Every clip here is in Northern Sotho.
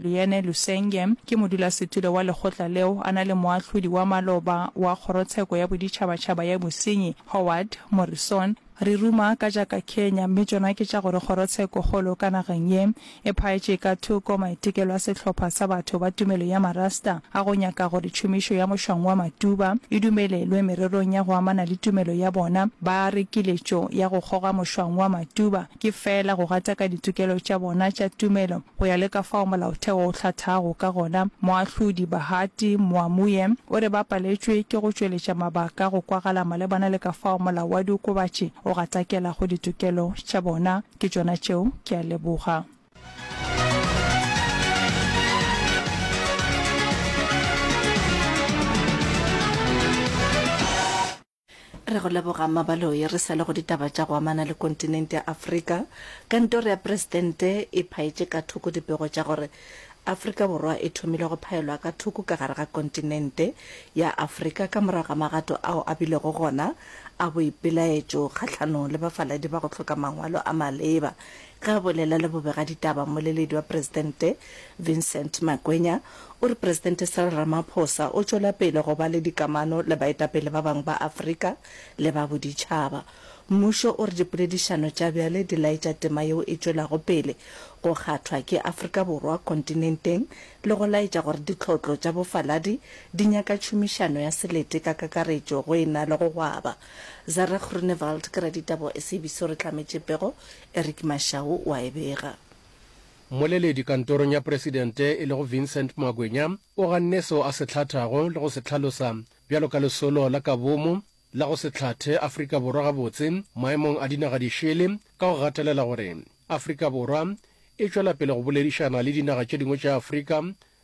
Leanne Lusenge ke modulasetulo wa lekgotla leo, a na le moahlodi wa maloba wa Kgorotsheko ya Boditšhabatšhaba ya Bosenyi, Howard Morrison. Re ruma ka tša ka Kenya, mme tšona ke tša gore kgorotshekokgolo ka nageng ye e phaetše ka thoko maitekelo a sehlopha sa batho ba tumelo ya Marasta a go nyaka gore tšhomišo ya mošwang wa matuba e dumelelwe mererong ya go amana le tumelo ya bona. Ba re kiletšo ya go kgoga mošwang wa matuba ke feela go gataka ditokelo tša bona tša tumelo. Go ya le ka fao Molaotheo o hlathago ka gona, Moahlodi Bahati Moamuye o re ba paletšwe ke go tšweletša mabaka a go kwagala malebana le ka fao molao wa diokobatši o gatakelago ditokelo tša bona. Ke tšona tšeo. Ke a leboga. Re go leboga Mmabaloi. Re sa le go ditaba tša go amana le kontinente ya Afrika, Kantoro ya Presidente e phaetše ka thoko dipego tša gore Afrika Borwa e thomile go phaelwa ka thoko ka gare ga kontinente ya Afrika ka morago ga magato ao a bilego gona a boipelaetšo kgahlanong le bafaladi ba go hloka mangwalo a maleba Ge a bolela le bobegaditaba, mmoleledi wa presidente, Vincent Makwenya, o re Presidente Cyril Ramaphosa o tšwela pele go ba le dikamano le baetapele ba bangwe ba Afrika le ba boditšhaba. Mmušo o re dipoledišano tša bjale di laetša tema yeo e tšwelago pele go kgathwa ke Afrika Borwa kontinenteng le go laetša gore ditlhotlo tša bofaladi di nyaka tšhomišano ya selete ka kakaretšo go e na le go gwaba Zara Groenewald ke raditaba wa SABC o re tlametše pego, Eric Mashau o a e bega. Mmoleledi kantorong ya presidente e lego Vincent Magwenya o ganne seo a se hlathago le go se hlalosa bjalo ka lesolo la ka bomo la go se hlathe Afrika Borwa gabotse maemong a dinaga dišele ka go gatelela gore Afrika Borwa e tšwela pele go boledišana le dinaga tše dingwe tša Afrika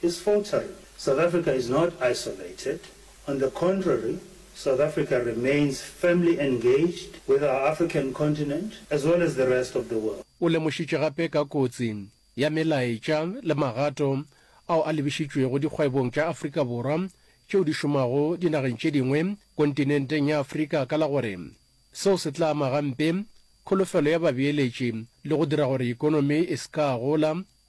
His faltering, South Africa is not isolated, on the contrary, South Africa remains firmly engaged with our African continent as well as the rest of the world. O lemošitše gape ka kotsi ya melaetša le magato ao a lebišitšwego dikgwebong tša Afrika Borwa tšeo di šomago dinageng tše dingwe kontinenteng ya Afrika ka la gore seo se tla ama gampe kholofelo ya babeeletši le go dira gore ekonomi e se ka gola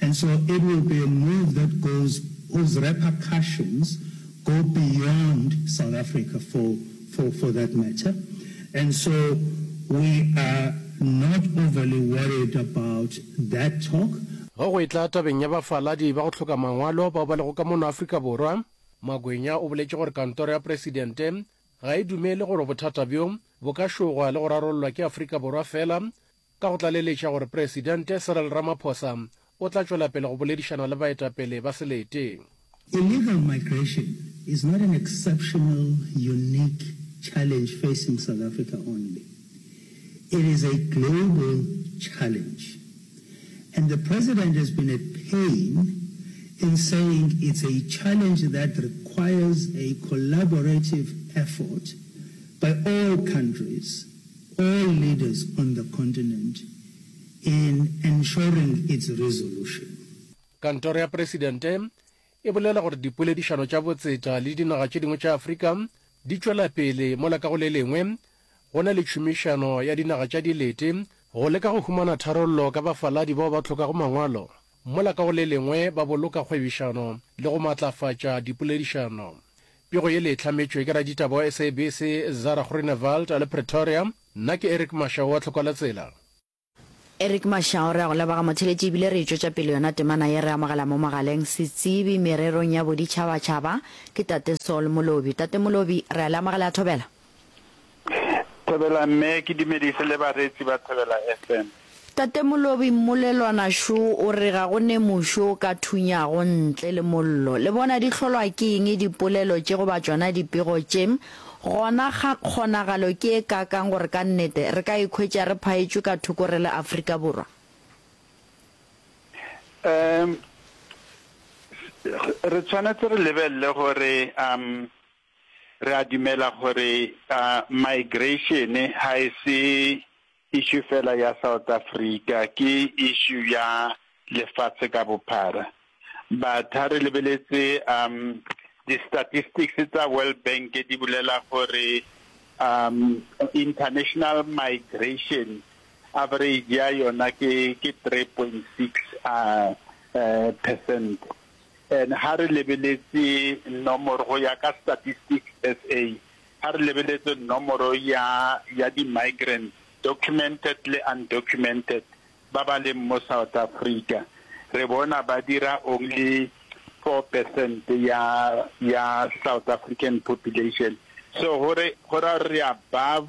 And so it will be a move that goes whose repercussions go beyond South Africa for for for that matter. And so we are not overly worried about that talk. Ge go etla tabeng ya bafaladi ba go hloka mangwalo bao ba lego ka mono Afrika Borwa, Makwenya o boletše gore kantoro ya Presidente ga e dumele gore bothata bjo bo ka šogwa le go rarollwa ke Afrika Borwa fela Ka go tlaleletša gore Presidente Cyril Ramaphosa o tla tšwela pele go boledišana le baetapele ba selete. Illegal migration is not an exceptional, unique challenge facing South Africa only. It is a global challenge and the President has been at pain in saying it's a challenge that requires a collaborative effort by all countries, all leaders on the continent in ensuring its resolution. Kantoro ya Presidente e bolela gore dipoledišano tša botsetša le dinaga tše dingwe tša Afrika di tšwela pele mola ka go le lengwe go na le tšhomišano ya dinaga tša dilete go leka go humana tharollo ka bafaladi bao ba hlokago mangwalo Mola ka go le lengwe ba boloka kgwebišano le go matlafatša dipoledišano. Pego yele e hlametšwe ke raditaba wa SABC Zara Groenewald a le Pretoria. Nna ke Eric Mashau wa Tlhokwalatsela. Eric Mashau, re a go leboga motheletši ebile re e tšwetša pele yona temana ye re amogela mo mogaleng setsebi mererong ya boditšhabatšhaba ke Tate Saul Molobi. Tate Molobi, re a le amogela ya thobela. Thobela mme ke dumedise le bareetsi ba Thobela FM. Tate Molobi mmolelwana šo o re ga go ne mošo o ka thunyago ntle le mollo. Le bona di hlolwa ke eng dipolelo tše goba tšona dipego tše? Gona kgonagalo ke e kaakang gore ka nnete re ka ikhwetša re phaetšwe ka thoko re le Afrika Borwa? Um, re tshwanetse re lebelele gore um Re a dumela gore migration ga e se issue fela ya South Africa, ke issue ya lefatshe ka bophara. But ha re lebeletse di statistics tsa World Bank di bolela gore international migration average ya yona ke three point six percent. And ha re lebeletse nomoro go ya ka Statistics SA, ha re lebeletse nomoro ya ya di migrants, documented le undocumented, ba ba leng mo South Africa, re bona ba dira only four percent ya ya South African population. So go re go ra gore re above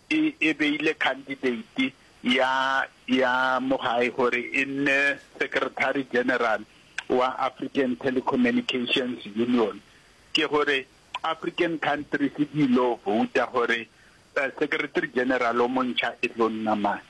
e, e beile khandideiti ya, ya mogae gore e nne Secretary General wa African Telecommunications Union. Ke gore African countries di lo vouta gore uh, Secretary General o montšha e tlo nna mang.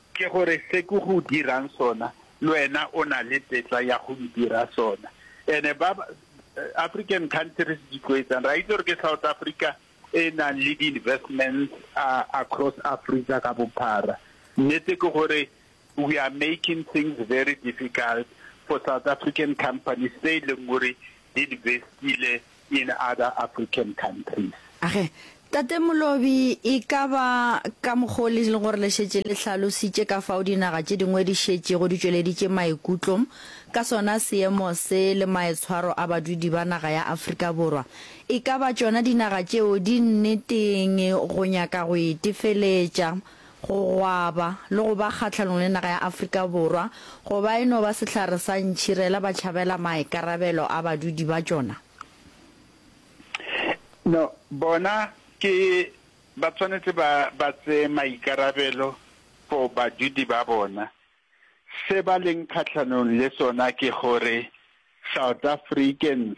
Ke gore se ke go dirang sona, le wena o na le tetla ya go ndira sona. And-e ba African countries di tlo etsang? Re a itse gore ke South Africa e e nang le di-investments across Africa ka bophara. Nnete ke gore we are making things very difficult for South African companies tse e leng gore di invest-ile in other African countries. Age, Tate Molobi, e ka ba ka mokgwa o le leng gore le šetše le hlalositše ka fao dinaga tše dingwe di šetšego di tšweleditše maikutlo ka sona seemo se le maetshwaro a badudi ba naga ya Afrika Borwa, e ka ba tšona dinaga tšeo di nneteng go nyaka go itefeletša go gwaba le go ba kgahlanong le naga ya Afrika Borwa go ba e no ba sehlare sa ntšhirela ba tšhabela maikarabelo a badudi ba tšona? No, bona ke ba tshwanetse ba ba tseye maikarabelo for badudi ba bona. Se ba leng kgahlanong le sona ke gore South Africans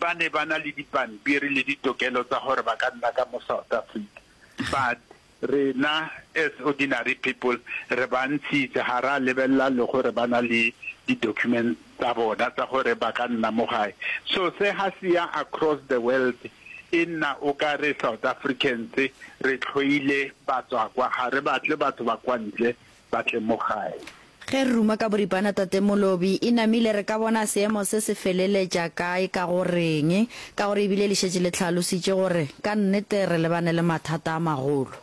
ba ne ba na le dipampiri le ditokelo tsa gore ba ka nna ka mo South Africa but rena as ordinary people re ba ntshitse ga ra lebelela le gore ba na le di document tsa bona tsa gore ba ka nna mo gae so se ga se ya across the world e nna o ka re South Africans re tlhoile batswakwa ga re batle batho ba kwa ntle ba tle mo gae. Ge re ruma ka boripana Tate Molobi, e namile re ka bona seemo se se feleletša kae ka go reng? Ka gore e bile le šetše le tlhalositše gore ka nnete re lebane le mathata a magolo.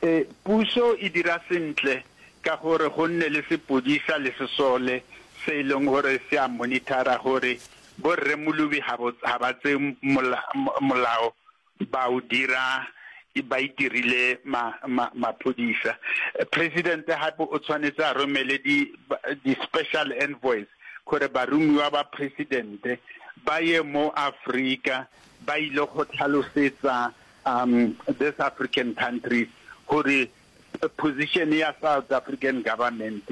E, puso e dira sentle ka gore go nne le sepodisa le sesole se e leng gore se a monithara gore bo Rre Molobi ga ba tsee molao ba o dira ba itirile ma, ma, maphodisa. President hape o tshwanetse a romele di, di special envoys gore barumiwa ba president ba ye mo Africa ba ile go tlhalosetsa um this African countries gore position ya South African government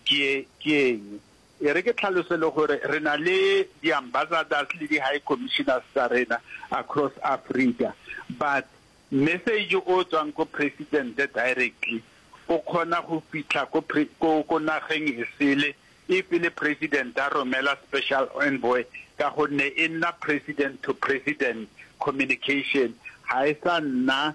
ke ke eng. E re ke tlhalose le gore re na le di-ambassadors le di-high commissioners tsa rena across Africa but message o tswang ko President directly o kgona go fitlha ko ko ko nageng e sele if e le President a romela special envoy ka gonne e nna President to President communication ga e sa nna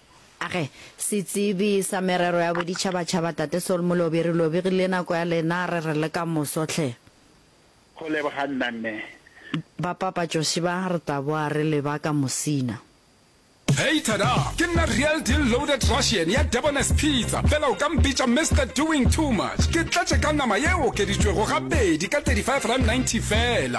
Age, Setsebi sa Merero ya Boditšhabatšhaba Tate Sol Molobi, re lobegile nako ya lena, re re le ka moso hle. Go leboga nna mme. Ba papa Josi ba, re tla boa re le ba ka mosina. Hei tada! Ke nna Real Deal Loaded Russian ya Debonairs Pizza, fela o ka mpitša Mister Doing Too Much. Ke tletše ka nama ye okeditšwego ga pedi ka 35 rand 90 fela.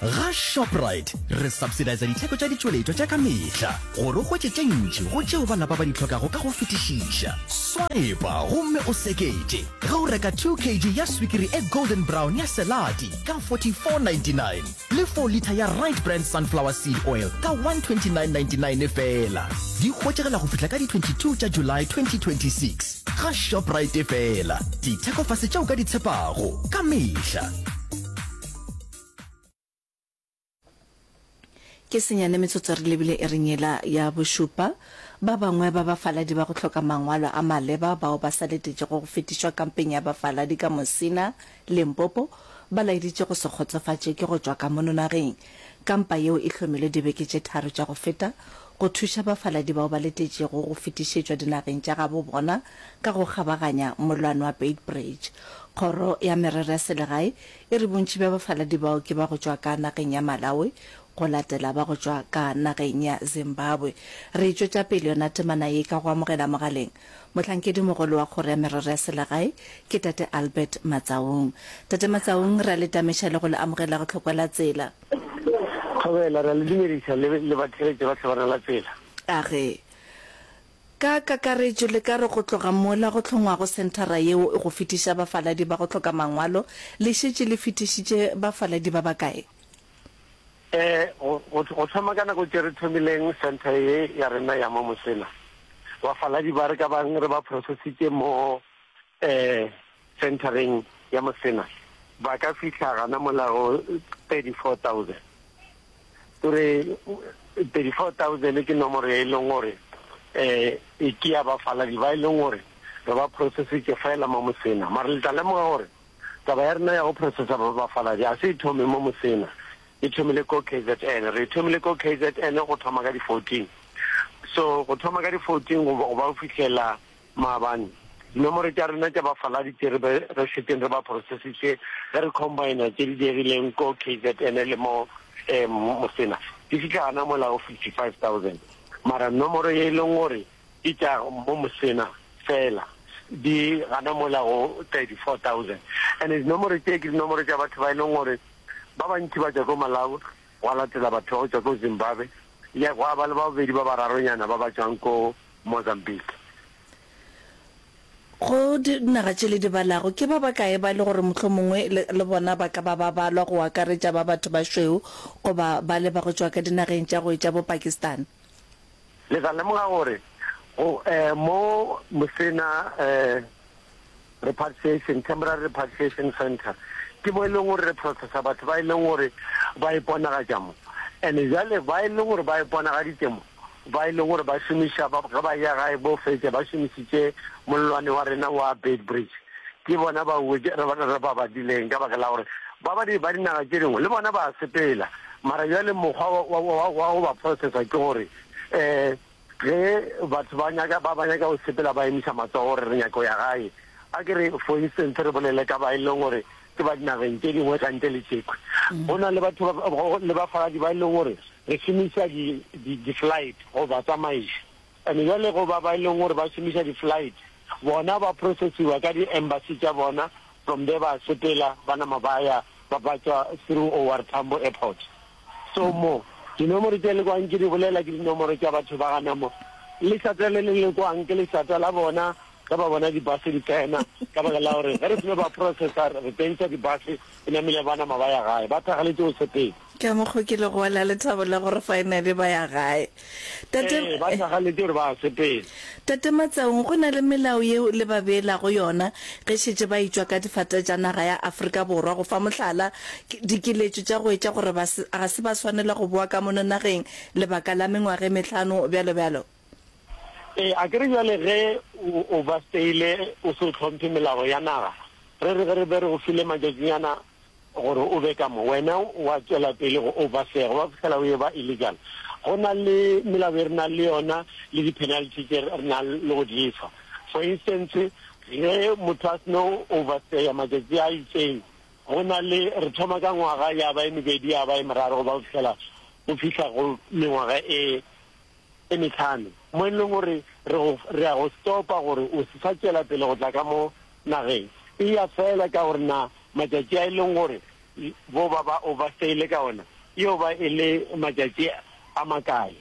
ga shoprite re subsidisa ditheko tša ditšweletšwa tša ka mehla gore o hwetše tše ntši go tšeo ba lapa ba di tlhokago ka go fetišiša swipa gomme o sekete ge o reka 2 kg ya swikiri e golden brown ya selati ka 4499 le 4 litha ya Right Brand Sunflower Seed Oil ka 129.99 feela. Di hwetšagala go fihla ka di 22 tša July 2026 ga Shoprite feela. Dithekofase tše o ka di tshepago ka mehla. Ke senyane metsotso re lebile ereng yela ya bošupa. Ba bangwe ba bafaladi ba go hloka mangwalo a maleba bao ba sa letetšego go fetišwa kampeng ya bafaladi ka Musina, Limpopo, ba laeditše go se kgotsofatše ke go tšwa ka mono nageng. Kampa yeo e hlomilwe dibeke tše tharo tša go feta go thuša bafaladi bao ba letetšego go fetišetšwa dinageng tša gabo bona ka go kgabaganya mollwane wa Beitbridge. Kgoro ya Merero ya Selegae e re bontši bja bafaladi bao ke ba go tšwa ka nageng ya Malawi go latela ba go tšwa ka nageng ya Zimbabwe. Re e tšwetša pele yona temana ye ka go amogela mogaleng Mohlankedimogolo wa Kgoro ya Merero ya Selegae ke Tate Albert Matsaong. Tate Matsaong, re a le tameša le go le amogela go Tlhokwa la Tsela. Thobela, re a le dumediša le, le batheeletše ba Tlhobana la Tsela. A ge. Ka kakaretšo le ka re go tloga mola go hlongwago senthara yeo e go fetiša bafaladi ba go hloka mangwalo, le šetše le fetišitše bafaladi ba bakae? E, go, go, go thoma ka nako tše re thomileng centre ye ya rena ya mo Mosela, bafaladi ba re ka bang re ba processitše mo e, centereng ya Mosela ba ka fihla gana mola go 34,000. O re 34,000 ke nomoro ye e leng gore e, e ke ya bafaladi ba e leng gore re ba processitše feela mo Mosela, mara le tla lemoga gore Taba ya rena ya go processa babafaladi ga se e thome mo Mosena, e thomile ko kzn. Re e thomile ko kzn go thoma ka di 14. So go thoma ka di 14 go go ba go fihlela maabane, dinomoro tša rena tša bafaladi tše re be re šeteng re ba processitše ge re combina tše di diegileng ko kzn le mo Mosena di fihla gana mola go 55,000. Mara nomoro ye e leng gore Di tla mo mosena fela di gana mola go 34,000 and dinomoro tše ke dinomoro tša batho ba e leng gore ba bantši ba tšwa ko Malawi gwa latela batho ba go tšwa ko Zimbabwe ya gwa ba le ba bobedi ba bararonyana ba ba tšwang ko Mozambique. Go dinaga tše le di balago ke ba bakae ba e le gore mohlomongwe le bona ba ka ba ba balwa go akaretša ba batho ba šweu goba bale ba go tšwa ka dinageng tša go etša bo Pakistan? Le tla lemoga gore go mo mo se na repatriation, temporary repatriation centre, ke mo e leng gore re processa batho ba e leng gore ba iponagatša mo. And jwale ba e leng gore ba iponagaditše mo, ba e leng gore ba šomiša ba ge ba ya gae bo fetša ba šomišitše mollwane wa rena wa Beitbridge, ke bona bao re ba badileng ka baka la gore ba ba di ba dinaga tše dingwe le bona ba sepela. Mara bjale mokgwa wa, wa, wa go ba processa ke gore um ge batho ba nyaka, ba, ba nyaka go sepela ba emiša matsogo gore re nyaka go ya gae. A ke re for instance re bolele ka ba e leng gore ke ba dinageng tše dingwe ka ntle le tšekhwi. Go na le batho ba, go, le bafaladi ba e leng gore re šomiša di, di, di-flight go ba tsamaiša. And bjale go ba ba e leng gore ba šomiša di-flight, bona ba processiwa ka di-embassy tša bona From there ba sepela ba nama ba ya ba patšwa through O R Tambo Airport. So mo, dinomoro tše le kwang ke di bolela ke dinomoro tša batho ba gana mo. Lešata le le le kwang ke lešata la bona ge ba bona di-bus di tsena ka baka la gore ge re file ba processor re pentša di-bus e namile ba nama ba ya gae. Ba thakgaletše go sepela. Ka mokgo ke lego wa la lethabo la gore finally ba ya gae. Tate Ee, ba tlagaletše gore ba sepele. Tate Matsaung, go na le melao yeo le ba beelago yona ge šetše ba itšwa ka difate tša naga ya Afrika Borwa. Go fa mohlala, ke, dikeletšo tša go etša gore ba se, ga se ba swanela go boa ka mono nageng lebaka la mengwaga e mehlano, bjalo bjalo. Ee, a ke re bjale ge o, o ba steile o se o hlomphe melao ya naga, re re ge re be re go file matšatšinyana gore o be ka mo, wena wa tšwela pele go oversega, wa fihlela o eba illegal. Go na le melao e re nang le yona le di-penalty tše re nang le go di efa. For instance, ge motho a seno overstaya matšatši a itseng, go na le, re thoma ka ngwaga, ya ba e mebedi, ya ba e meraro, go ba go fihlela o fihla go mengwaga e e mehlano, mo e lego gore re go, re a go stopa gore o se sa tšwela pele go tla ka mo nageng. Eya feela ka gore na matšatši a e lego gore bo ba ba overstayile ka ona e yo ba e le matšatši a makae.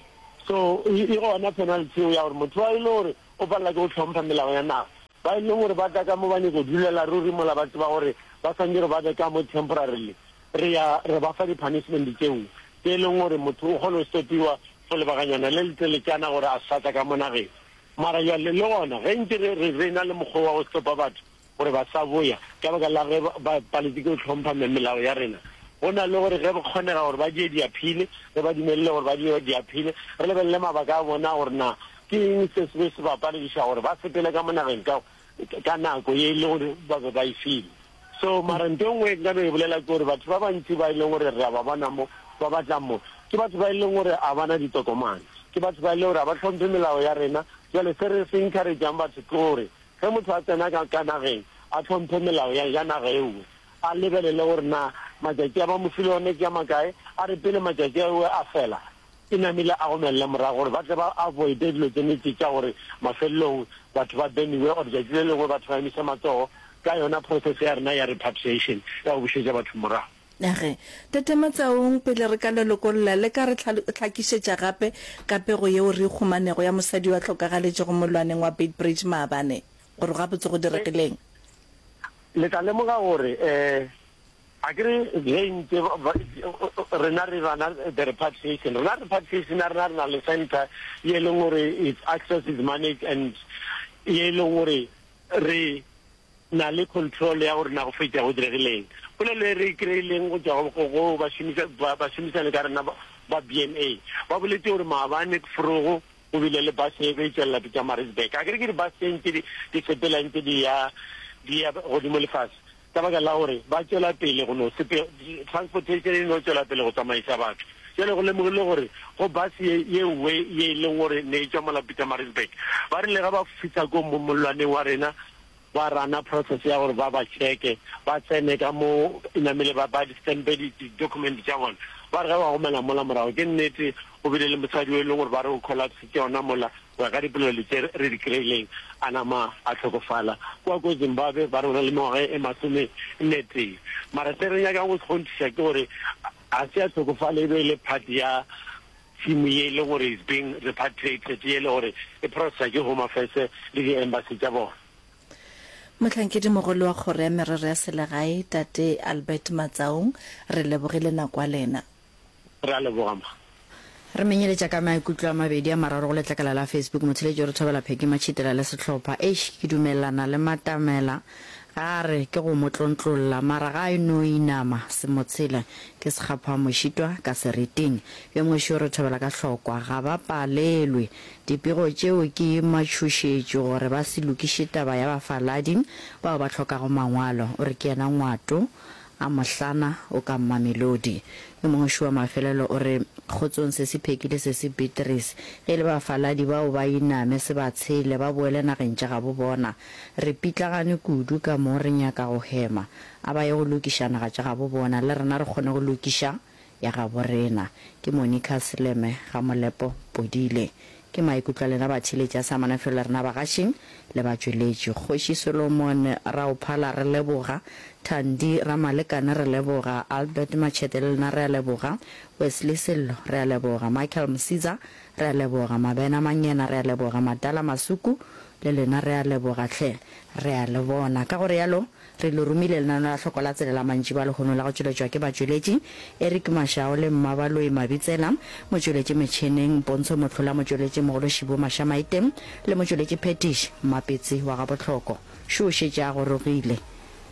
So, e, e gona penalty yeo ya gore motho wa e lego gore o palela ke go hlompha melao ya naga. Ba e lego gore ba tla ka mo ba nyaka go dulela ruri mola ba tseba gore ba swanetše gore ba be ka mo temporarily, Re ya re ba fa di-punishment tšeo tše e leng gore motho o kgona go stopiwa for lebakanyana le leteletšana gore a se sa tla ka mo nageng. Mara bjale le gona ge ntše re re re na le mokgwa wa go stopa batho gore ba sa boya ka baka la ge ba ba paletswe ke go hlompha me melao ya rena, go na le gore ge go kgonega gore ba die di-appeal, re ba dumelele gore ba die di-appeal, re lebelele mabaka a bona gore na ke eng se se be se ba palediša gore ba sepele ka mo nageng ka ka nako ye e le gore ba be ba e file. So, mara nto e nngwe e nka no e bolela ke gore batho ba bantši ba e leng gore re a ba bona mo, ba batlang mo, ke batho ba e leng gore ga ba na ditokomane. Ke batho ba e leng gore ga ba hlomphe melao ya rena. Jwale se re se encourage-ang batho ke gore ge motho a tsena ka, ka nageng, a hlomphe melao ya, ya naga e nngwe, a lebelele gore na matšatši a ba mo file one ke a makae, a re pele matšatši ao a fela, Ke namile a gomelela morago gore ba tle ba avoide dilo tse nete tša gore mafelelong batho ba beniwe or tšatši le lengwe batho ba emiša matsogo ka yona process ya rena ya repatriation ya go bušetša batho morago. A re, Tate Matsaong, pele re ka le lokolla, le ka re hlakišetša gape ka pego yeo re e khumanego ya mosadi yo a hlokagaletšego molwaneng wa Beitbridge maabane, gore gabotse go diregileng? Le tla lemoga gore, ee, Akere ge ntse rena re rana the repatriation, rena repatriation ya rena re na le center ye e leng gore its access is managed and ye e leng gore re na le control ya gore na go fetša go diregileng. Polelo e re e kry-ileng go tšwa go bašomišani ka rena ba BMA ba boletše gore maabane forogo go bile le bus e be e tšwelela Pietermaritzburg. Akere ke di-bus tše ntše di sepelang ntše di ya godimo le fase. Ka baka la gore ba tšwela pele go no sepe, transportation e no tšwela pele go tsamaiša batho. Bjale go lemogilwe gore go bus ye, ye nngwe ye e leng gore ne e tšwa mola Pietermaritzburg. Ba rile ge ba fihla ko mo, mollwaneng wa rena, ba rana process ya gore ba ba checke, ba tsene ka mo e namile, ba, ba di-stamp-e di, di-document tša bona. Ba re ge ba gomela mola morago, ke nnete go bile le mosadi o e leng gore ba re o collapsitše gona mola, Go ya ka dipolelo tše re di kry-ileng, a nama a hlokofala kua ko Zimbabwe ba re o na le mengwaga e masomenetee. Mara se re nyakang go se kgonthiša ke gore ga se a hlokofala, e be e le part ya team ye e leng gore is being repatriated ye e le gore e processwa ke Home Affairs le di-embassy tša bona. Mohlankedi-mogolo wa Kgoro ya Merero ya Selegae, Tate Albert Matsaong, re lebogile nako ya lena. Re a leboga, mma. Re menyeletša ka maikutlo a mabedi a mararo go letlakala la Facebook. Motheletši o re thobela Phecky Matšhitela le sehlopha. Eish, ke dumelelana le Matamela ge a re ke go mo tlontlolla, mara ga e no inama. Semotshela ke sekgaphamošitwa ka seriting. Yo moše o re thobela ka hlokwa. Ga ba palelwe. Dipego tšeo ke matšhošetši gore ba se lokiše taba ya bafaladi bao ba hlokago mangwalo, o re ke yena Ngwato A mohlana o ka Mamelodi. Yo mongwe šuwa mafelelo o re, Kgotsong Sesi Pheki le Sesi Beatrice, ge e le bafaladi bao ba iname se ba tshele ba boele nageng tša gabo bona. Re pitlagane kudu ka mo re nyaka go hema. A ba ye go lokiša naga tša gabo bona le rena re kgone go lokiša. ya gabo rena. Ke Monica Seleme Gamolepo Podile. Ke maikutlo a lena batheeletši a sa amana felo le rena bagašing le batšweletši. Kgoši Solomon Raophala re leboga, Thandi Ramalekane re leboga, Albert Matšhete le lena re a leboga, Wesley Sello re a leboga, Michael Msiza re a leboga, Mabena Mangena re a leboga, Madala Masuku le lena re a leboga hle. Re a le bona. Ka go realo Re lo romile lenano la hloko la tsele la mantši ba lehono la go tšweletšwa ke batšweletši, Eric Mashao le Mmabaloyi Mabitsela, motšweletši metšheneng, Pontsho Mohlola, motšweletši mogolo, Shibo Mashamaite le motšweletši phethiši, Mmapetsi wa Gabohloko. Šo o šetše a gorogile.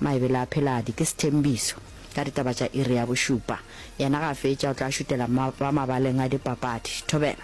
Maebele a Pheladi ke Sethembiso ka ditaba tša iri ya bošupa. Yena ga a fetša o tla šutela ba mabaleng a dipapadi. Thobela.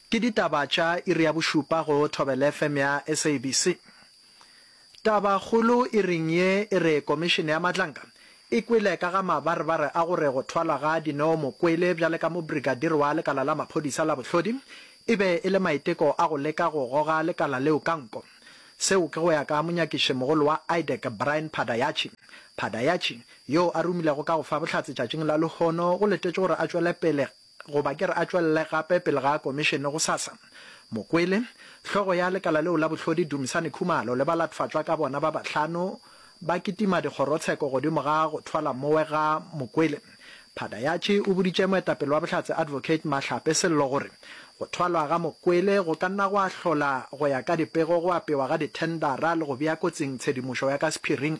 Ke ditaba tša iri ya bošupa go Thobelfm ya SABC. Tabakgolo iring ye e re Komišene ya Matlanka e kwele ka ga mabarebare a gore go thwalwa ga Dineo Mokwele bjale ka mobrigadiri wa lekala la maphodisa la bohlodi e be e le maiteko a go leka go goga lekala leo ka nko. Seo ke go ya ka monyakišimogolo wa IDEC, Brian Phadayachi. Phadayachi, yoo a romilego ka go fa bohlatse tšatšing la lehono, go letetšwe gore a tšwele pele goba ke re a tšwelele gape pele ga komišene gosasa. Mokwele, hlogo ya lekala leo la bohlodi Dumisani Khumalo le balatfatšwa ka bona ba bahlano ba kitima dikgorotsheko godimo ga go thwala mowe ga Mokwele. Phadayatši o boditše moetapele wa Bohlatse Advocate Mahlape Sello gore go thwalwa ga Mokwele go ka nna gwa hlola go ya ka dipego go apewa ga dithendara le go bea kotsing tshedimošo ya ka sephiring.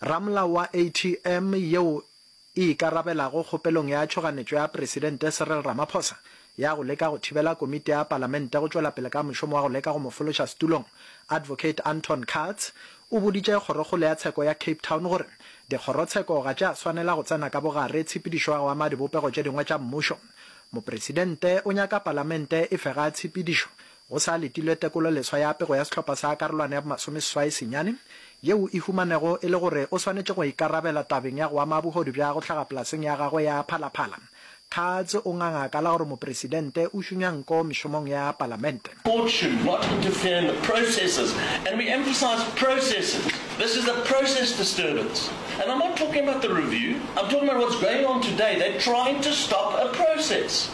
Ramolao wa ATM yeo e ikarabelago kgopelong ya tšhoganetšo ya Presidente Cyril Ramaphosa ya go leka go thibela komiti ya Palamente go tšwela pele ka mošomo wa go leka go mo fološa setulong, Advocate Anton Katz o boditše Kgorokgolo ya Tsheko ya Cape Town gore dikgorotsheko ga tša swanela go tsena ka bogare tshepedišo ya go ama dibopego tše dingwe tša mmušo. Mopresidente o nyaka Palamente e fe ga tshepedišo Go sa letilwe tekololeswa ya pego ya sehlopha sa karolwana ya bomasomeseswai senyane, yeo e humanego e le gore o swanetše go ikarabela tabeng ya go ama bohodu bja go hlaga polaseng ya gagwe ya phalaphala, Katz o nganga ka la gore Mopresidente o šunya nko mešomong ya Palamente. Court should not interfere in the processes and we emphasise processes. This is a process disturbance and I'm not talking about the review, I'm talking about what's going on today, they're trying to stop a process.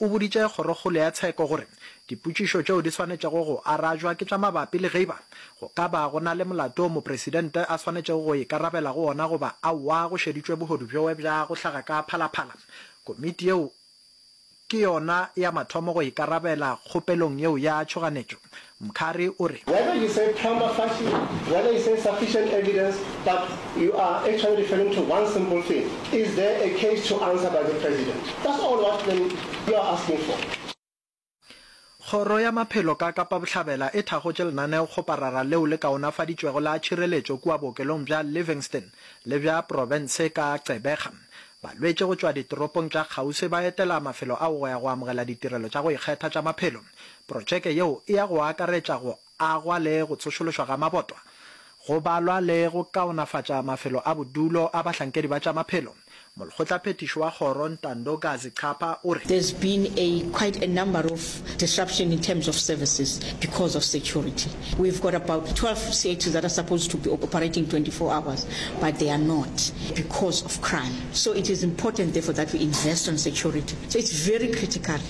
O boditše Kgorokgolo ya Tsheko gore dipotšišo tšeo di swanetšego go arajwa ke tša mabapi le geiba go ka ba go na le molato o Mopresidente a swanetšego go ikarabela go ona goba aowa go šeditšwe bohodu bjoe bja go hlaga ka phalaphala. Komiti yeo ke yona ya mathomo go ikarabela kgopelong yeo ya tšhoganetšo, Mkhari o re. Whether you say prama facie, whether you say sufficient evidence, but you are actually referring to one simple thing, is there a case to answer by the President? That's all what then you are asking for. Kgoro ya Maphelo ka Kapa Bohlabela e thakgotše lenaneokgoparara leo le kaonafaditšwego la tšhireletšo kua bookelong bja Livingstone le bja profense ka Gqeberha. Balwetši go tšwa ditoropong tša kgauswi ba etela mafelo ao go ya go amogela ditirelo tša go ikgetha tša maphelo. Protšeke yeo e ya go akaretša go agwa le go tsošološwa ga mabotwa, go balwa le go kaonafatša mafelo a bodulo a bahlankedi ba tša maphelo. Molkgotlaphethiši wa kgoro Ntando Gazi Chapa o re. There's been a quite a number of disruption in terms of services because of security. We've got about 12 theatres that are supposed to be operating 24 hours but they are not because of crime. So it is important therefore that we invest on security. So it's very critical.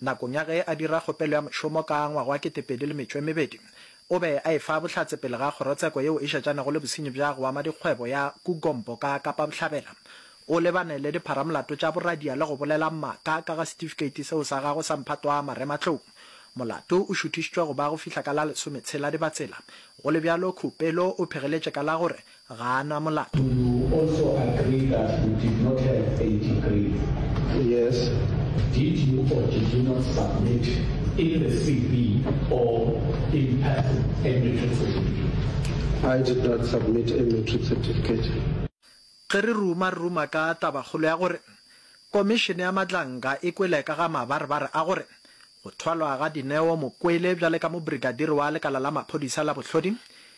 Nakong ya ge a dira kgopelo ya mošomo ka ngwaga wa ketepedi le metšo e mebedi, o be a e fa bohlatse pele ga kgorotsheko yeo e šetšanego le bosenyi bja go ama dikgwebo ya Kugombo ka Kapa Bohlabela. O lebane le dipharamolato tša boradia le go bolela maaka ka ga setifikeiti seo sa gagwe sa mphatwa marematlou. Molato o šuthišitšwe go ba go fihla ka la lesometshela Dibatsela. Go le bjalo, Khupelo o phegeletše ka la gore Ga a na molato. Do you also agree that you did not have a degree? Yes. Did you or did you not submit in the CV or in person a matric certificate? I did not submit a matric certificate. Ge re ruma, re ruma ka tabakgolo ya gore Komišene ya Matlanka e kwele ka ga mabarebare a gore go thwalwa ga Dineo Mokwele bjale ka mobrigadiri wa lekala la maphodisa la bohlodi